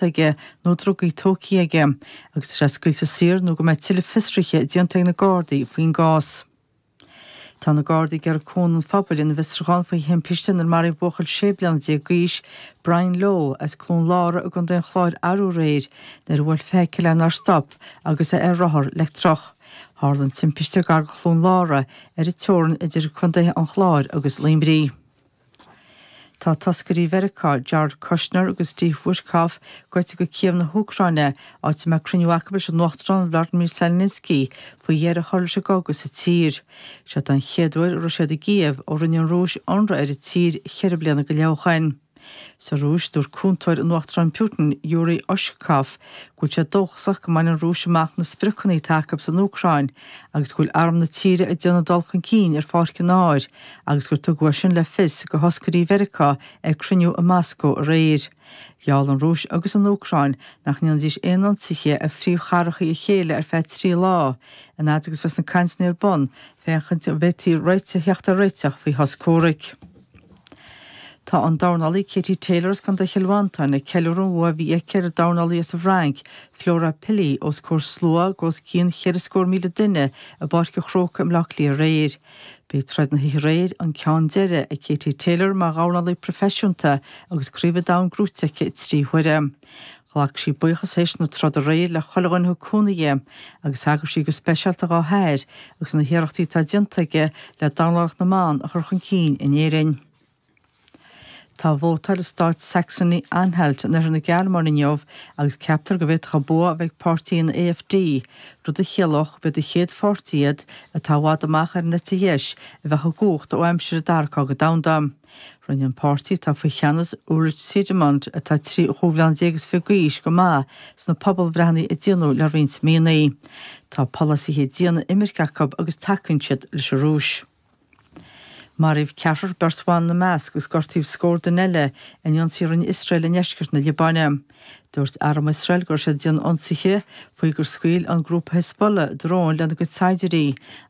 déanta aige nó drugaí tógtha aige agus tá sé scaoilte saor nó go mbeidh tuilleadh fiosruithe déanta ag na Gardaí faoin gcás. Tá na Gardaí ag iarraidh Cúnamh an Phobail ina bhfiosrúchán faoi thimpiste inar maraíodh buachaill sé bliana déag d'aois, Brian Lowe, as Cluain Lára i gContae an Chláir arú aréir nuair a bhuail feithicil é nár stop agus é ar rothar leictreach. Tharla an timpiste gar go Cluain Lára, ar an teorann idir Contaetha an Chláir agus Luimní. Tá toscairí Mheiriceá, Jared Kushner agus Steve Witkoff, gaibhte go Cív na hÚcráine, áit a mbeidh cruinniú acu leis an Uachtarán Vlodymyr Zelensky faoi dheireadh a chur leis an gcogadh sa tír. Seod é an chéad uair a raibh siad i gCív ó rinne an Rúis ionradh ar an tír ceithre bliana go leith ó shin. Sa Rúis, dúirt cúntóir an Uachtaráin Putin, Yuri Ushakov, go bhfuil sé dóchasach go mbainfidh an Rúis amach na spriocanna atá acu san Úcráin agus go bhfuil arm na tíre ag déanamh dul chun cinn ar pháirc an áir agus gur tugadh é sin le fios go thoscairí Mheiriceá ag cruinniú i Moscó aréir. Gheall an Rúis agus an Úcráin nach ndéanfaidís aon ionsaithe ar phríomhchathracha a chéile ar feadh trí lá an fhaid agus a bheas na cainteanna ar bun féachaint an bhféadfaí theacht ar réiteach faoi shos comhraic. Tá an dornálaí Katie Taylor as Contae Chill Mhantáin ag ceiliúradh an bhua a bhí aici ar an dornálaí as an bhFrainc, Flora Pili, os comhair slua os cionn cheithre scór míle duine i bPáirc an Chrócaigh i mBleá Cliath aréir. B'é troid na hoíche aréir an ceann deiridh ag Katie Taylor mar dhornálaí proifisiúnta agus Craobh an Domhain gnóite aici trí huaire. Ghlac sí buíochas théis na troda aréir le chuile dhuine thug cúnamh di, agus thagair sí go speisialta dhá hathair agus na hiarrachtaí atá déanta aige le dornálaíocht na mban a chur chun cinn in Éirinn. Tá vótáil i stát Saxony-Anhalt in oirthear na Gearmáine inniu agus ceaptar go bhféadfadh an bua a bheith ag páirtí an AfD, rud a chiallódh gurb iad an chéad pháirtí iad atá i bhfad amach ar an eite dheis a bheadh i gcumhacht ó aimsir an Dara Cogadh Domhanda. Rinne an páirtí atá faoi cheannas Ulrich Siegmund, atá trí chúig bliana déag is fiche d'aois, go maith sna pobalbhreitheanna a déanadh le roinnt míonna. Tá polasaithe diana imirce acu agus tacaíonn siad leis an Rúis. Maraíodh ceathrar beirt bhan ina measc agus gortaíodh scór duine eile in ionsaí a rinne Iosrael i ndeisceart na Liobáine. Dúirt arm Iosrael go raibh siad ag déanamh ionsaithe faoi gur scaoil an grúpa Hezbollah dróin lena gcuid saighdiúirí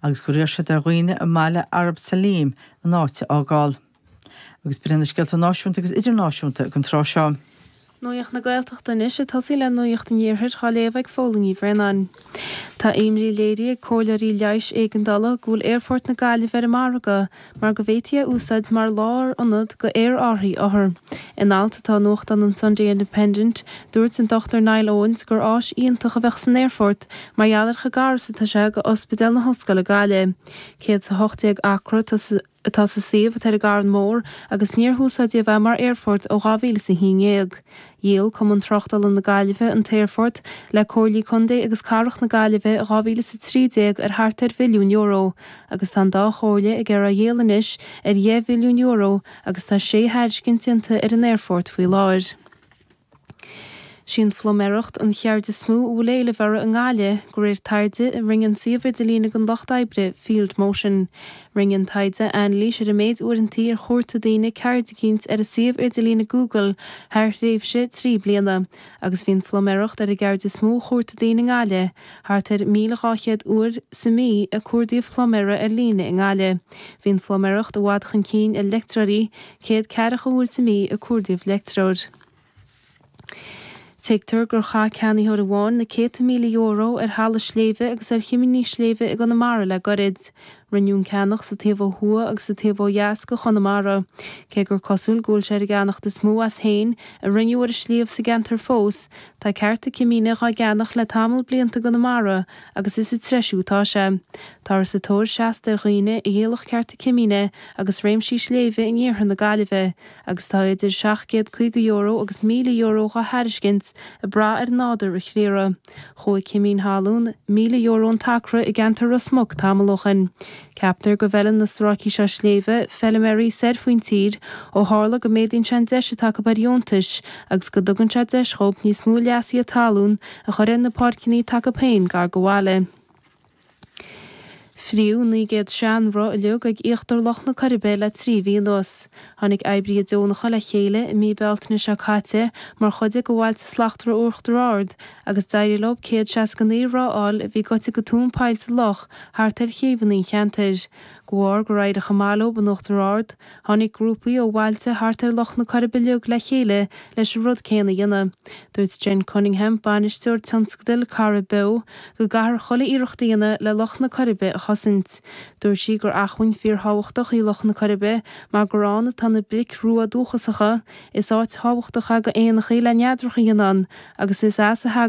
agus gur iarr siad ar dhaoine i mbaile Arab Salim an áit a fhágáil. Agus b'in iad na scéalta náisiúnta agus idirnáisiúnta don tráth seo. Nuacht na Gaeltachta anois ag tosaí le nuacht an Iarthair dhá léamh ag Fódhla Ní Bhraonáin. Tá imní léirithe ag comhairleoirí leighis éigeandála go bhfuil Aerfort na Gaillimhe ar an margadh mar go bhféadfaí é a úsáid mar lárionad go aerárthaí othar. In alt atá i nuachtán an Sunday Independent, dúirt an Dr Niall Owens gur áis iontach a bheadh san aerfort mar gheall ar chomh gar is atá sé go Ospidéal na hOllscoile Gaillimh. 118 acra atá atá sa suíomh atá ar an gCarn Mór agus níor húsáideadh é mar aerfort ó 2011. Dhíol Cumann Tráchtála na Gaillimhe an t-aerfort le Comhairlí Contae agus Cathrach na Gaillimhe i 2013 ar thart ar mhilliún euro agus tá an dá Chomhairle ag iarraidh é a dhíol anois ar dheich mhilliún euro agus tá sé thairiscint déanta ar an aerfort faoi láthair. 'Sí an phluiméireacht an cheird is mó a bhfuil éileamh uirthi i nGaillimh, de réir taighde a rinne an suíomh idirlín don lucht oibre, Field Motion. Rinne an taighde anailís ar an méid uaireantaí ar chuartaigh daoine ceird eicínt ar an suíomh idirlín Google thar thréimhse trí bliana, agus bhí an phluiméireacht ar an gceird is mó a chuartaigh daoine i nGaillimh, thart ar 1,200 uair sa mí a cuardaíodh pluiméara ar líne i nGaillimh. Bhí an phluiméireacht i bhfad chun cinn ar leictreoirí, Céad ceathracha uair sa mí a cuardaíodh leictreoir. Tuigtear gur chaith ceannaitheoir amháin na céadta míle euro ar thalamh sléibhe agus ar chimíní sléibhe i gConamara le gairid. Rinneadh an ceannach sa taobh ó thuaidh agus sa taobh ó dheas de Chonamara. Cé gur cosúil go bhfuil sé ar an gceannacht is mó as féin a rinneadh ar an sliabh sa gceantar fós, tá cearta cimíne dhá gceannach le tamall blianta i gConamara agus is ag treisiú atá sé. Táthar sa tóir seasta ar dhaoine a dhíolfadh cearta cimíne agus réimsí sléibhe in iarthar na Gaillimhe agus tá idir €750 agus €1,000 dhá thairiscint ag brath ar nádúr an chriathraigh. Chuaigh cimín thalún, €1,000 an t-acra, i gceantar Ros Muc tamall ó shin. Ceaptar go bhfeileann na stráicí seo sléibhe feiliméaraí soir faoin tír ó tharla go méadaíonn sé an deis atá acu ar dheontais agus go dtugann sé deis dhóibh níos mó leasuithe talún a chur ar na páirceannaí atá acu féin gar do bhaile. Fríothadh 900 sean roth uilig ag íochtar Loch na Coiribe le trí mhí anuas. Tháinig oibrithe deonacha le chéile i mí Bealtaine seo caite mar chuid de Bhailte Slachtmhara Uachtar Ard a agus d'éirigh leo céad seasca naoi roth a fháil a bhí goite go tóin poill sa loch thart ar chéibheanna an cheantair. De bharr gur éirigh chomh maith leo in Uachtar Ard, tháinig grúpaí ó bhailte thart ar Loch na Coirbe uilig le chéile leis an rud céanna a dhéanamh. Dúirt Jen Cunningham, bainisteoir tionscadail Corrib Beo, go gcaithfear chuile iarracht a dhéanamh le Loch na Coirbe a chosaint. Dúirt sí gur acmhainn fíor-thábhachtach í Loch na Coirbe mar gur ann atá na bric rua dúchasacha, Is áit thábhachtach ag éanacha í le neadracha a dhéanamh ann agus is as a thagann.